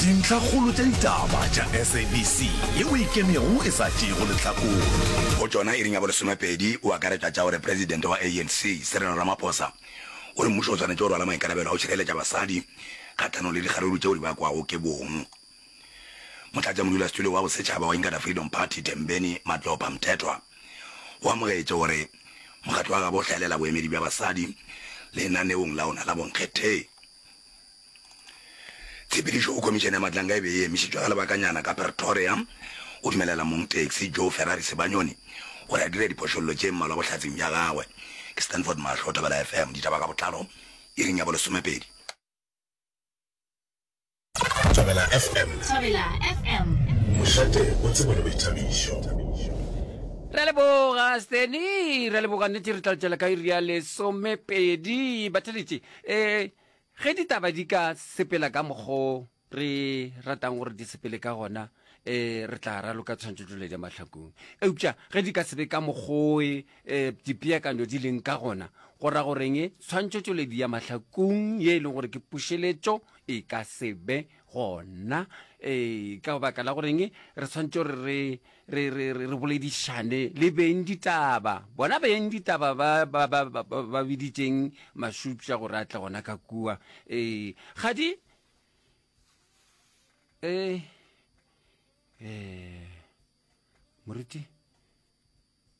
Dintlhakgolo tša ditaba tša SABC yeo e kenego e sa tšeego lehlakore. Go tšona iring ya bolesomepedi o akaretša tša gore presidente wa ANC, Cyril Ramaphosa, o re mmušo o swanetše go rwala maikarabelo a go šireletša basadi kgahlanong le dikgaruru tšeo di bakwago ke bong. Motlatšamodulasetulo wa Bosetšhaba wa Inkatha Freedom Party, Thembeni Matlopha Mthethwa, o amogetše gore mokgatlo wa gabo o hlaelela boemedi bja basadi lenaneong la ona la bonkgetheng. Tshepedišo go Khomišene ya Matlanga e be e emišitšwe ga lebakanyana ka Pretoria go dumelela mong taxi Joe Ferrari Sebanyoni gore a dire diphošollo tše mmalwa bohlatsing bja gagwe. Ke Stanford Mahlo, Thobela FM, ditaba ka botlalo iring ya bolesomepedi. Thobela FM. Thobela FM. Mošate o tsebo le boithabišo. Re a leboga Steny, re a leboga nnete re tla tšwela ka iri ya lesomepedi. Batheletše, ee, Ge ditaba di ka sepela ka mokgo re ratang gore di sepele ka gona, e, re tla raloka tshwantšhotšoledi ya mahlakong. Eupša ge di ka se be ka mokgo e, e, dipeakanyo di leng ka gona, go ra gore eng? Tshwantšhotšoledi ya mahlakong ye e leng gore ke pušeletšo e ka se be gona. E, ka baka la gore eng? Re swanetše gore re re, re, re, re boledišane le beng ditaba, bona beng ditaba ba, ba, ba, ba, ba, ba biditšeng Mashupša gore a tle gona ka kua. Ee, ga di. Ee, ee, moriti.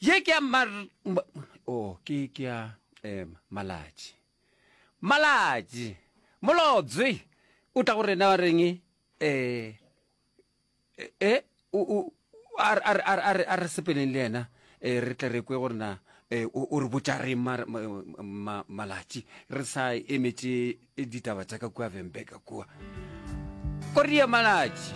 Ye ke ya mar, o, ke, ke ya um, Malatši. Malatši, Molobjwe o tla go rena wa reng? E, e, o, o, a, a, a, a, a re sepeleng le yena, e, re tle re kwe gore na e, o, o re botša reng ma, ma, ma, Malatši, re sa emetše ditaba tša ka kua Vembeka kua. Korea Malatši.